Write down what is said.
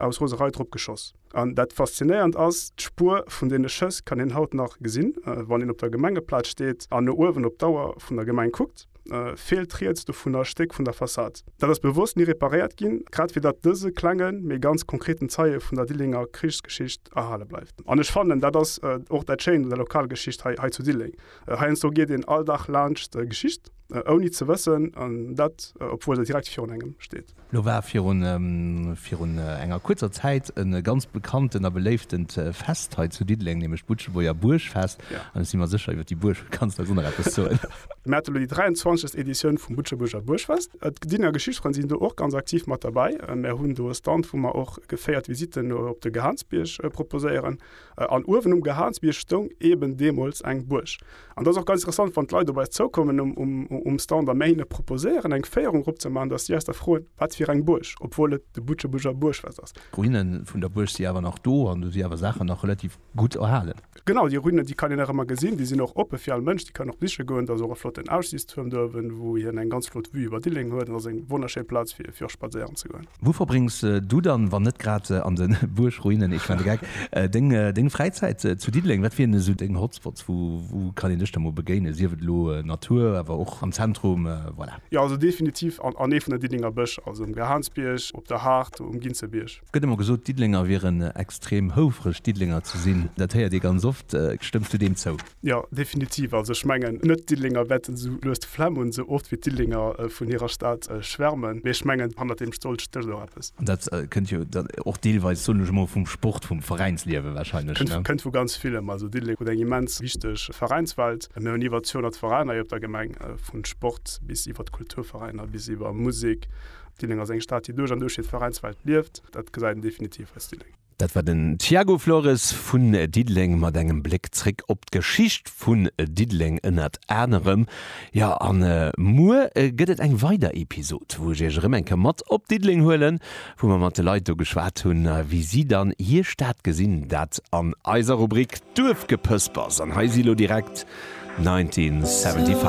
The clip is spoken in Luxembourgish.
aus Roserei drop geschoss. An dat Faszinéierend ass, d'Spuer vun deene Schëss kann een haut nach gesinn, wann een op der Gemengeplaz steet an no uewen op d'Auer vun der Gemeng kuckt, feelt riets dovunner e Stéck vun der Fassad. Dat ass bewosst ni reparéiert ginn, grad fir datt dëse klenge mee ganz konkreten Zeie vun der Dillenger Krichsgeschicht erhale bleift. An ech fannen, dat ass och dat Schéint un der Lokalgeschicht hei zu Dilleng, heiansdo geet een all Dag laanscht Geschicht, Ouni ze wëssen, an dat obwuel se direkt virun engem steet. Lo war virun enger kuerzer Zäit e ganz bekanntent a beléiftent Fest hei zu Diddeleng, nämlech d'Butschebuerger Buergfest. An ech si mer sécher, iwwer déi Buerg kanns de eis och nach eppes soen. Mir hate lo déi 23. Editioun vum Butschebuerger Buergfest. D'Diddenger Geschichtfrënn sinn do och ganz aktiv mat derbäi. Mir hunn do e Stand, wou mer och geféiert Visitten op de Gehaansbierg proposéieren. An uewen um Gehaansbierg stoung eben deemools eng Buerg. An dat ass och ganz interessant, wann d'Leit op eis zoukommen um Stand a mir hinne proposéieren, eng Féierung eropzemaachen, datt si eis da froen, wat fir eng Buerg, obwuel et de Butschebuerger Buergschlass ass. D'Ruine vun der Buerg si awer nach do an do si awer Saachen nach relativ gutt erhalen. Genau, déi Ruinen, déi kann een nach ëmmer gesinn. Déi sinn och oppe fir all Mënsch. Déi kann een och besiche goen. Et ass och e flotten Aussiichtstuerm do uewen, wou hien eng ganz flott Vue iwwer Dilleng huet. Et ass eng wonnerschéi Plaz, fir och spadséieren ze goen. Wou verbréngs du dann, wann net grad an de Buergruinen, ich meine Gag, deng Fräizäit zu Diddeleng? Wat wieren esou deng Hotspots? Wou kann een dech da mol begéinen, sief et elo Natur, awer och am Zentrum? Voilà. Jo, also definitiv an ee vun der Diddelenger Bësch, also um Gahaunsbierg, op der Haardt, um Ginzebierg. Et gëtt ëmmer gesot, d'Diddelenger wieren extrem houfreg, Diddelenger ze sinn. Dat héiert ee ganz oft. Stëmms du deem zou? Jo, definitiv. Also ech mengen, net d'Diddelenger wäerten esou lues de Flemm hunn, esou oft wéi d'Diddelenger vun hirer Stad schwärmen. Mee ech mengen, hannert deem Stolz stécht och eppes. An dat kënnt jo dann och deelweis, soen ech emol, vum Sport, vum Veräinsliewe wahrscheinlech, ne? Kënnt vu ganz villem. Also Diddeleng huet eng immens wichteg Veräinswelt. Mir hunn iwwer 200 Veräiner hei op der Gemeng, vun Sport bis iwwert Kulturveräiner bis iwwer Musek. Diddeleng ass eng Stad, déi duerch an duerch fir d'Veräinswelt lieft. Dat gesäit een definitiv als Diddeleng. Dat war den Tiago Flores vun Diddeleng mat engem Bléck zréck op d'Geschicht vun Diddeleng ënnert anerem. Jo, a muer gëtt et eng weider Episod, wou ech Iech erëm eng Kéier mat op Diddeleng huelen, wou mer mat de Leit do geschwat hunn, wéi si dann hir Stad gesinn. Dat an eiser Rubrik Duerfgepëspers an hei si lo direkt 1975.